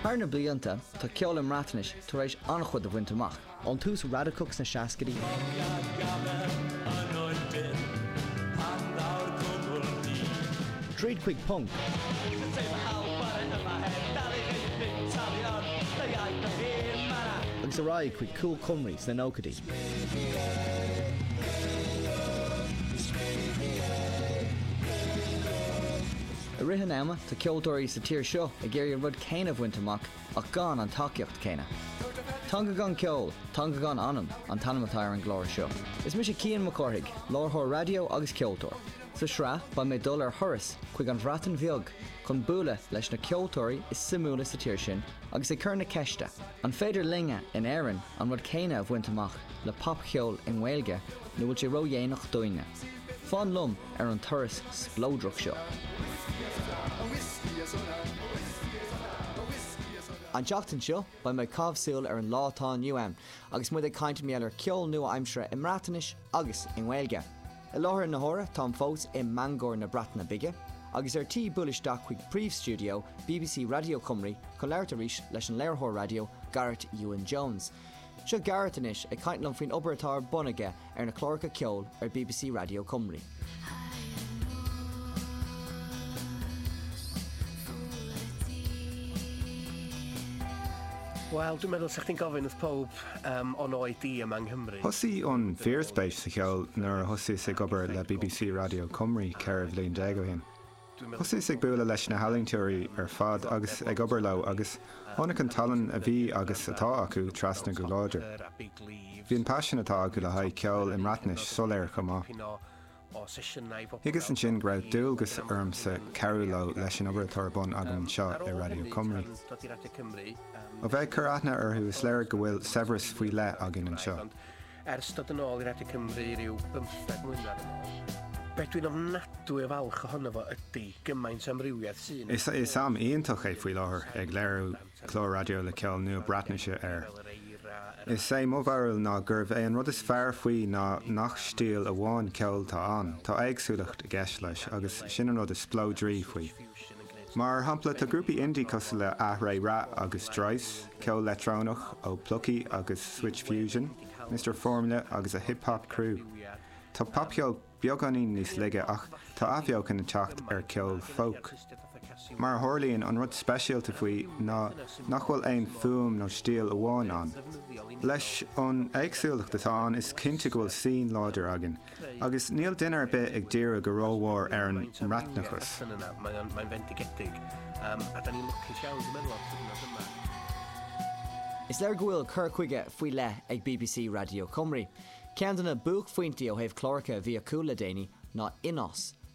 Thar na blianta, tá ceol i mBreatnais tar éis an-chuid a bhaint amach. Ón tús radacach sna seascaidí, tríd chuig punc, agus ar aghaidh chuig Cool Cymru sna nóchaidí, I rith an ama, tá ceoltóirí sa tír seo ag iarraidh an rud céanna a bhaint amach ach gan an tacaíocht céanna. Teanga gan ceol, teanga gan anam, an t-ainm atá ar an gclár seo. Is mise Cian Mac Cárthaigh, láithreoir raidió agus ceoltóir. Sa tsraith, beidh mé ag dul ar thuras chuig an Bhreatain Bheag chun bualadh leis na ceoltóirí is suimiúla sa tír sin agus ag cur na ceiste, an féidir linne in Éirinn an rud céanna a bhaint amach le popcheol i nGaeilge nó bhfuil sé ródhéanach dúinne? Fan liom ar an turas spleodrach seo. An tseachtain seo, beidh mé ag caitheamh súil ar an lá atá inniu ann agus muid ag caint mar gheall ar ceol nua-aimseartha i mBreatnais agus i nGaeilge. I láthair na huaire, táim fós i mBangor na Breataine Bige agus ar tí buail isteach chuig príomhstiúideo bbc Raidió Cymru chun labhairt arís leis an léiritheoir raidió Gareth Iwan Jones. Seo Gareth anois ag caint liom faoin obair atá ar bun aige ar na cláracha ceoil ar bbc Radio Cymru. Wel, dw i'n meddwl I think of ins pob an áit díom yng Nghymru. Thosaigh an fíorspéis sa cheol nuair a thosaíos ag obair le bbc Radio Cymru ceithre bhliain déag ó shin. Thosaíos ag bualadh leis na healaínteoirí ar fad agus ag obair leo agus tháinig an tallann a bhí agus atá acu trasna go láidir. Bhí an paisean atá acu le haghaidh ceoil i mBreatnais soiléir chomh maith. Thuigeas ansin go raibh dualgas ormsa cabhrú leo leis an obair atá ar bun agam anseo i Radio Cymru. Ó bheith ag cur aithne orthu is léir go bhfuil saibhreas faoi leith againn anseo. ar stad an áil rat ag mréiriú um stad mún ar an áil. Between am natú i bhil chohanamh a tí go main sam riúiad sin. Is am iontach é faoi láthair ag léirú clár radio le ceol nua Breatnaise air. Is é mo bharúil ná gurbh é an rud is fearr faoi ná nach stíl amháin ceoil atá ann, tá éagsúlacht i gceist leis agus sin an rud is spleodraí faoi. Mar shampla, tá grúpaí indie cosúil le Yr Eira agus Dryce, ceol leictreonach ó Plyci agus Switch Fusion, Mister Phormula agus a Hip Hop Crew. Tá popcheol beagáinín níos laige ach tá athbheochan ag teacht ar cheol folk. Mar a tharlaíonn, an rud speisialta faoi ná nach bhfuil aon fhuaim nó stíl amháin ann. Leis an éagsúlacht atá ann, is cinnte go bhfuil scene láidir againn. Agus níl duine ar bith ag díriú go rómhór ar an mBreatnachas. Is léir go bhfuil cur chuige faoi leith ag bbc Radio Cymru. Ceann de na buaicphointí ó thaobh cláracha a bhí acu le déanaí ná Unnos,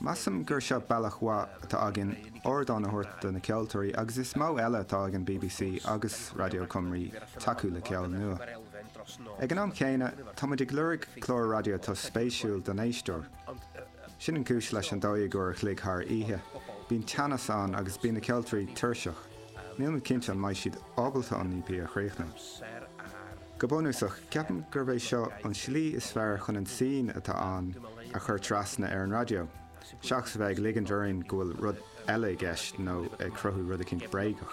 Measaim gur seo bealach mhaith atá againn ardán a thabhairt do na ceoltóirí agus is modh eile atá ag an bbc agus Radio Cymru tacú le ceol nua. Ag an am céanna, tá muid ag lorg clár raidió atá spéisiúil don éisteoir. Sin an cúis leis an dó dhéag uair a chloig thar oíche. Bíonn teannas ann agus bíonn na ceoltóirí tuirseach. Níl mé cinnte an mbeidh siad ábalta an EP a chríochnú. Go bunúsach, ceapaim gurb é seo an slí is fearr chun an scene atá ann a chur trasna ar an raidió, seachas a bheith ag ligint orainn go bhfuil rud eile i gceist nó ag cruthú rud eicínt bréagach.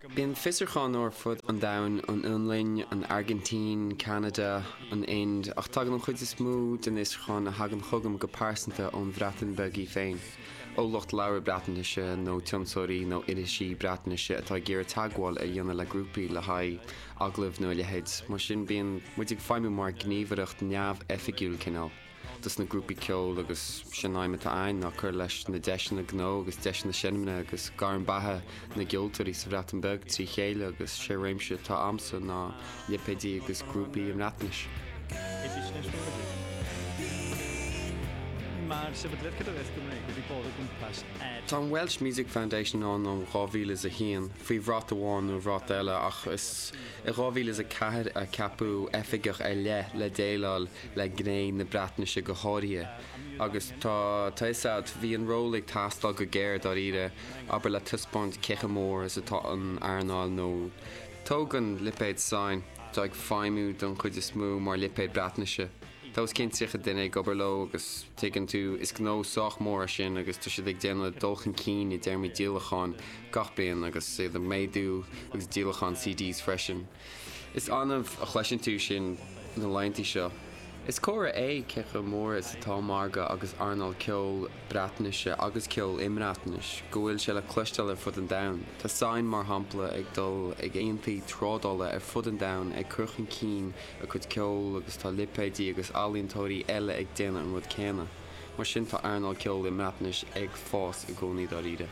Bíonn fiosrúcháin ó ar fud an domhain, an Fhionlainn, an Airgintín, Ceanada, an Ind, ach tagann an chuid is mó den fhiosrúcháin a thagann chugam go pearsanta ón Bhreatain Bheag í féin, ó lucht labhartha Breatnaise nó tionscnóirí nó irisí Breatnaise atá ag iarraidh teagmháil a dhéanamh le grúpaí le haghaidh agallamh nó a leithéid, mar sin bíonn muid ag feidhmiú mar gníomhaireacht neamhoifigiúil cineál. do sna grúpaí ceoil agus sin aidhm atá againn ná cur leis na deiseanna gnó agus deiseanna seinmne agus gairm beatha na gceoltóirí sa Bhreatain Bheag trí chéile agus sé réimse atá agamsa ná lipéidí agus grúpaí i mBreatnais. Tá an Welsh Music Foundation ann ó 2001 faoi bhrat amháin nó brat eile ach is i 2004 a ceapadh oifigeach ar leith le déileáil le gné na Breatnaise go háirithe, agus tá a fhios agat, bhí an ról ag teastáil go géar, dáiríre, abair, le taispeáint cé chomh mór is atá an earnáil nó tóg an lipéad Sain, tá ag feidhmiú don chuid is mó mar lipéad Breatnaise, tá os cionn 30 duine ag obair leo agus tuigeann tú, is gnó sách mór é sin agus tá siad ag déanamh dul chun cinn i dtéarmaí díolacháin gach bliain agus iad ag méadú ag díolachán CDs freisin. Is annamh a chloiseann tú sin na laetheantaí seo. Is comhartha é cé chomh mór is atá margadh agus earnáil ceoil Breatnaise agus ceoil i mBreatnais go bhfuil sé le cloisteáil ar fud an domhain. Tá Sain, mar shampla, ag dul ag aontaí trádála ar fud an domhain ag cur chun cinn a cuid ceoil agus tá lipéidí agus ealaíontóirí eile ag déanamh an rud céanna. Mar sin tá earnáil ceoil i mBreatnais ag fás i gcónaí dáiríre.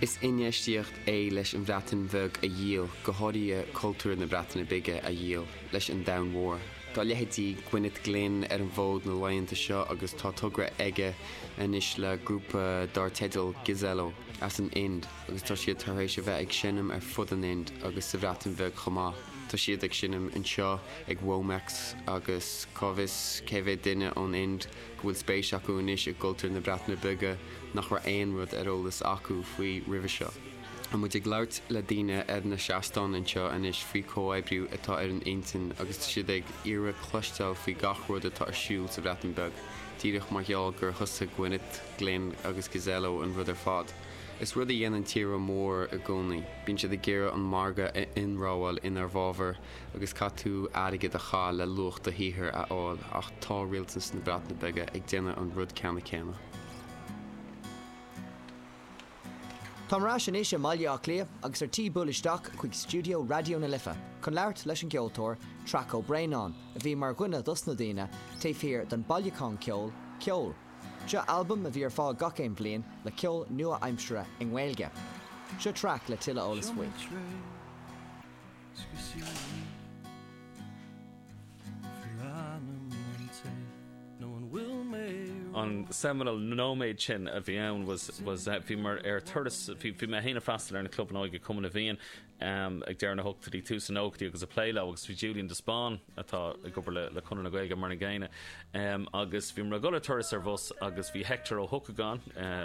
Is infheistíocht é leis an Bhreatain Bheag a dhíol, go háirithe cultúr na Breataine Bige a dhíol, leis an domhan mhór. Tá leithéidí Gwyneth Glyn ar an bhfód na laethanta seo agus tá togra aige anois le grúpa dar teideal Ghazalaw as an Ind agus tá siad tar éis a bheith ag seinm ar fud an Ind agus sa Bhreatain Bheag chomh maith. Tá siad ag seinm anseo ag Womex agus cá bhfios cé mhéad duine ón Ind. go bhfuil spéis acu anois i gcultúr na Breataine Bige nach raibh aon rud ar eolas acu faoi roimhe seo. Tá muid ag labhairt le daoine ar na seastáin anseo anois faoi chomhoibriú atá ar a n-intinn agus tá siad ag iarraidh cloisteáil faoi gach rud atá ar siúl sa Bhreatain Bheag, díreach mar gheall gur thosaigh Gwyneth Glyn agus Ghazalaw an rud ar fad. Is rud a dhéanann tíortha móra i gcónaí, bíonn siad ag iarraidh an margadh a ionramháil inár bhfabhar, agus caithfidh tú airgead a chaith le luach do shaothair a fháil ach tá rialtas na Breataine Bige ag déanamh an rud ceannann céanna. Táim ar ais anois i mBaile Átha Cliath agus ar tí buail isteach chuig stiúideo Raidió na Life chun labhairt leis an gceoltóir Traic Ó Braonáin a bhí mar dhuine dos na daoine taobh thiar den bailiuchán ceoil Ceol. Seo albam a bhí ar fáil gach aon bhliain le ceol nua-aimsire i nGaeilge. Seo Traic le tuilleadh eolas faoi. Speisialaí Phleanáilte nó an bhfuil mé. an seminal nóiméad sin a bhí ann was was bhí mé ar turas bhí bhí mé fhéin ag freastal ar na clubanna óige Cumann na bhFiann ag deireadh na hochtóidí tús na nóchaidí agus ag plé leo agus bhí Julian de Spáinn atá ag obair le le Conradh na Gaeilge mar an gcéanna agus bhí mé ag dul ar turas ar bhus agus bhí Hector Ó hEochagáin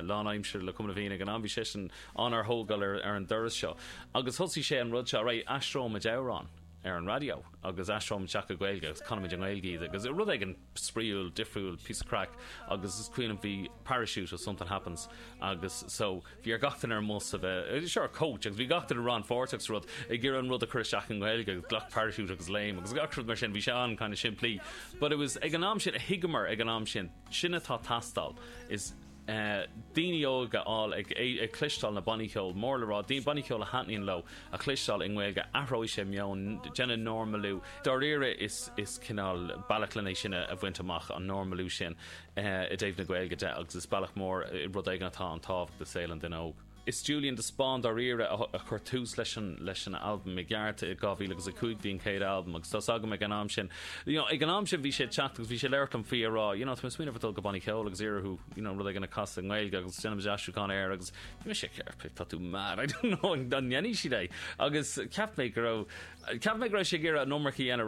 lánaimseartha le Cumann na bhFiann ag an am bhí seisean ann ár dtógáil ar an dturas seo agus thosaigh sé an rud seo, alright, aistreoimid amhrán ar an raidió agus aistreoimid isteach go Gaeilge agus canfaimid i nGaeilge iad agus rud éigin spraíúil, difriúil, píosa craic agus is cuimhin liom bhí Parachute ó Something Happens agus so bhí ar gach duine ar an mbus a bheith, sure coach agus bhí gach duine rannpháirteach sa rud ag iarraidh an rud a chur isteach i nGaeilge agus glac parachute agus léim agus gach rud mar sin, bhí sé an kind of simplí but it was ag an am sin a thuigeamar ag an am sin sin atá ag teastáil is daoine óg a fháil ag cloisteáil na bannaí cheoil mór le rá, bannaí ceoil a thaitníonn leo a chloisteáil i nGaeilge. Athróidh sé meon, déanfaidh normalú, dáiríre is cineál bealach len é sin a bhaint amach, an normalú sin i dtaobh na Gaeilge de agus is bealach mór, rud éigin atá an-tábhacht i saol an duine óg. Is Julian de Spáinn dáiríre a chuir tús leis an albam i gceart, i 2005 bhí an chéad albam agus tá's agam ag an am sin, you know, ag an am sin bhí sé ag teacht agus bhí sé ag labhairt liom faoi ag rá you know tá mé ag smaoineamh ar dul go bannaí ceoil agus iarraidh you know rud éigin a chasadh i nGaeilge agus déanfaidh muid aistriúchán air agus bhí mise ag ceapadh tá tú mad I don't know an ndéanfaidh siad é agus cheap mé go raibh cheap mé go raibh sé ag iarraidh an iomarca a dhéanamh